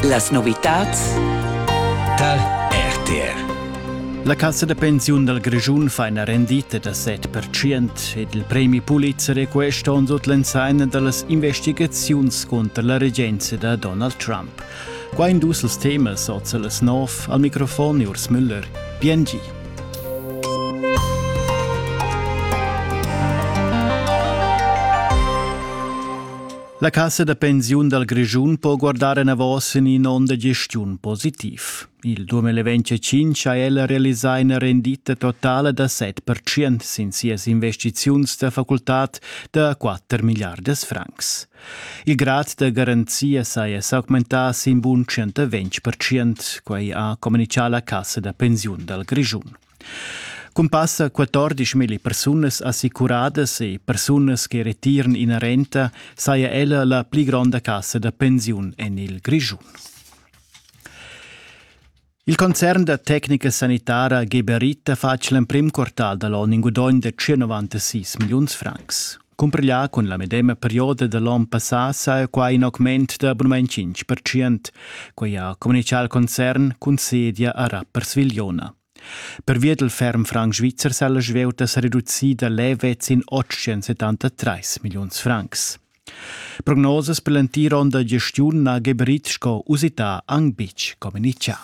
Las novitads tar RTR. La cassa da pensiun dal Grischun fa ina rendita da 7% ed il premi Pulitzer è quest onn sut l'ensaina da las investigaziuns cunter la regenza da Donald Trump. Qua in dus els temas oza las 9 al microfon Urs Müller. Biengi. La cassa da pensiun dal Grischun po guardar enavos en in onn da gestiun positiv. Il 2025 ha ella realisà ina rendita totala da 7% sin sias investiziuns da facultad da 4 miliardas francs. Il grad da garanzia saja s'augmentà sin bun 120%, quai ha communichà la cassa da pensiun dal Grischun. Cun passa 14 milli persunas assicuradas e persunas che retiran ina renta saja ella la pli gronda cassa da pensiun en il Grischun. Il concern da tecnica sanitara Geberita fatg l'emprim quartal da l'onn in gudogn da 196 milliuns francs. Cumpriglià cun la medema perioda da l'on passà saja quai in augment da abunament 5%. Quai ha communitgà il concern cun sedia a Rappers Vigliona. Pervia dal ferm franc svizzer sa la svieuta sa reducida levez in 873 milliuns francs. Prognosas per l'entir onn da gestiun na geberit sco usità anc betg communitgà.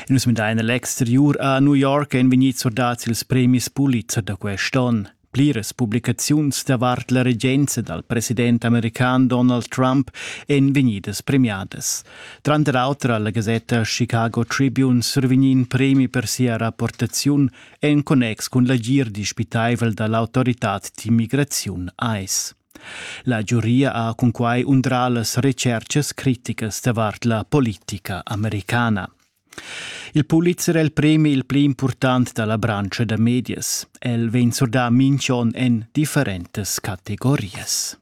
Nus midain l'exteriur a New York ein vegnids surdads ils premis Pulitzer da quest onn. Pliras publicaziuns davart la regenza dal president american Donald Trump èn vegnidas premiadas. Tranter auter alla gasetta Chicago Tribune survegni in premi per sia rapportaziun en connex cun l'agir dispitaivel da l'autoritad d'immigraziun ICE. La giuria ha cunquai undrà las retschertgas criticas davart la politica americana. Il Pulitzer è il premi il pli impurtant da la branscha da medias. El vegn surdà minch'on en differentas categorias.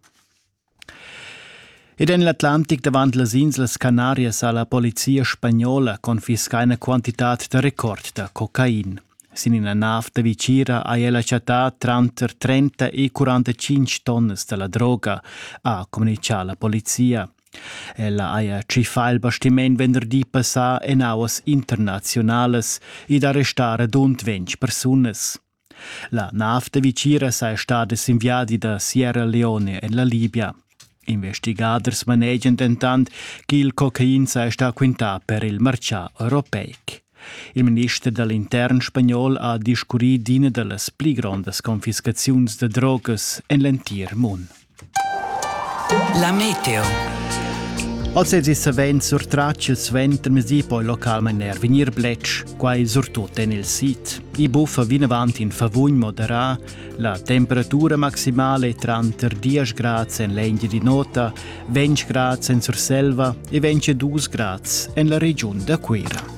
Ed en l'Atlantic davant las inslas Canarias ha la polizia spagnola confiscà ina quantitad da record da cocain. Sin ina nav da vicira ha ella chattà tranter 30 e 45 tonnas da la droga, ha communitgà la polizia. Ella haja tschiffà il bastiment venderdi passà en auas internaziunalas ed arrestà radund ventg persunas. La nav da Viciras è stada sin viadi da Sierra Leone en la Libia. Investigaders manegian dentant ch'il cocain saja stà quintà per il martgà europeic. Il minister da l'intern spagnol ha discurrì d'ina da las pli grondas confiscaziuns da drogas en l'entir mund. La meteo. Als es savens surtratg il suenter mesi poi localmain er vegnir bletsch, quai surtut en il sid. I buffa vinavant in favugn moderà, la temperatura maximale tranter 10 grads en l'Engia di Nota, 20 grads en Surselva e 22 grads en la regiun da Cuira.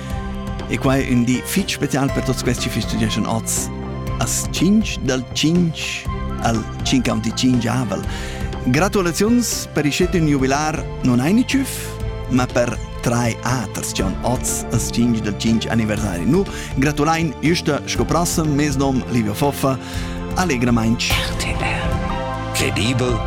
E quai ün di fich special per tuots quests chi festegeschan oz. As 5 dal 5 al 55avel. Gratulaziuns per iscet ün jubilar non aini tschüff, ma per trai aters che on oz as 5 del 5 anniversari nu gratulain justa sco prossem mes nom Livio Foffa allegramainch RTL Credibel